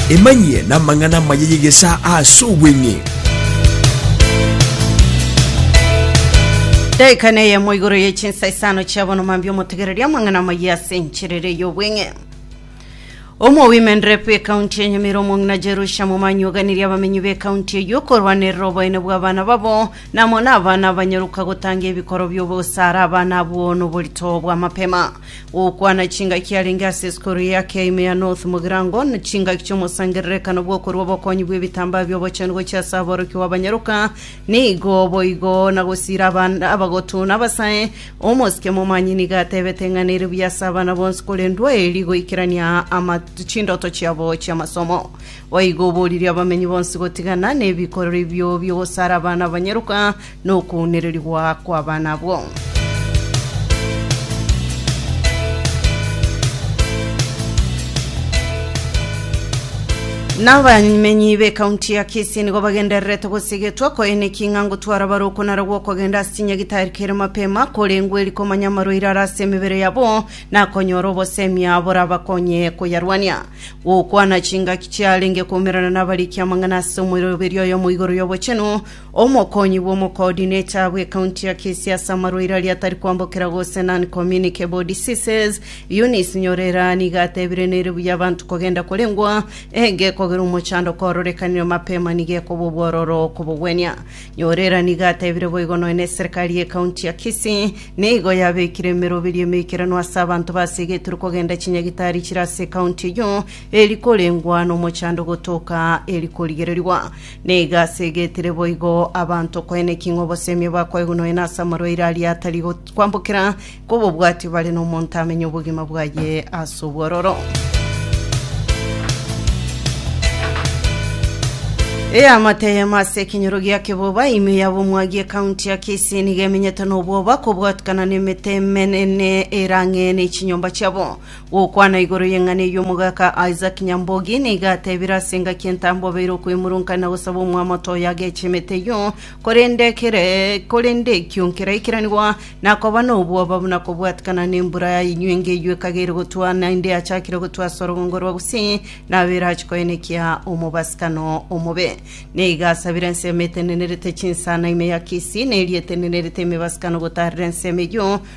emanyie n'amang'ana amaya y'egesaa ase obweng'e Daika neyemo igoro ye chinsa isano chia bono mambia omotegereria amang'ana amaya ase encherere y'obweng'e. Omowimeni rep ekaunti ya Nyamira omong'ina Jerusha Momanyi oganirie abamenyi b'ekaunti eyio korwanerera oboene bw'abana babo namo n'abana abanyoruka gotanga ebikoro bi'obosare abana abwo noborito bw'amapema. Gokwana chingaki arenge ase esukuru eye ake ime ya North Mugirango na chingaki ch'omosangererekano bw'okorua obokonyi bw'ebitambaa bi'obochenu gochia ase aborokia bw'abanyoruka nigo boigo na gosiira abana abagotu na abasae Omosike-momanyi nigo atebete ng'a nere buya ase abana bonsi korendwa eeri goikerania ama chindoto chiabo chi'amasomo. Boigo oboririe abamenyi bonsi gotigana nebikorero ebio bi'ogosara abana abanyaroka na okounererigwa kw'abana abwo. Na abamenyi b'ecounty ya Kisii nigo bagendererete gosigetwa koeneki ng'a ngotwara bare okonara gw'okogenda ase chinyagitari kere mapema korengwe eri komanya amarwaire are ase emebere yabo na konyora obosemia borabakonye koyarwania. Gokwana chingaki chiarenge koumerana nabarikia amang'ana ase omoiroberio oyomo igoro y'obochenu, Omokonyi bw'omokoordinator bw'ecounty ya Kisii ase amarwaire aria atari kwambokera gose non-communicable diseases, Eunice Nyorera, nigo atebire nere buya abanto kogenda korengwa egekogera omochando koororekanire mapema nigo ekoba obwororo kobogwenia. Nyorera nigo atebire boigo nonya na eserekari y'ecounty ya Kisii nigo yabekire emeroberi emeikeranu ase abanto basegetirwe kogenda chinyagitari chire ase ecounty eyio eri korengwa nomochando gotoka eri korigererigwa. Nigo asegetire boigo abanto koene ki ng'a obosemi bakoegwa nonya nase amarwaire aria atari got- kwambokera, kobobwati bare nomonto amenye obogima bwaye ase obwororo. Eamate eyemo ase ekenyoro gia keboba, ime yaba omwagi ekaunti ya Kisii nigo emenyete nobwoba kobwatukana nemete emenene erang'e ne chinyomba chiabo. Gokwana igoro y'eng'ana eyio omogaka Isaac Nyambogi nigo atebire ase engaki entambe obeire okoimorunkana na gosaba omwamoto oyo ageche emete eyio, korende ekere korende ekio nkeraikeranigwa na koba nobwoba buna kobwatikana nembura ya inywenge eyio ekagere gotwa naende yachakire gotwa ase orogongo rwa Gusii nabo erache koenekia omobasikano omobe. Nigo asabire ensemo etenenerete chinsana ime ya Kisii na eria etenenerete emebasikano gotaarera ensemo eyio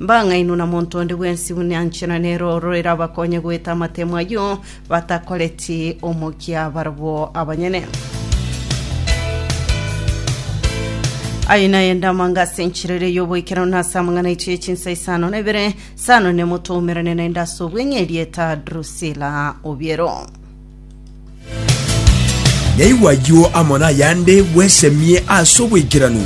Mbang'aini na monto onde bwensi buna anche na nere oro erabakonye goeta amatemo ayio batakoreti omokia barabwo abanyene. Aye naye ndamanga ase enchirere y'oboikerano na ase amang'ana aitu ye chinsa isano na ibere, sano ne moto oumerane naende ase obweng'e erieta Drusila Obiero. Naigwa ayio amo nayande bwesemie ase oboikeranu.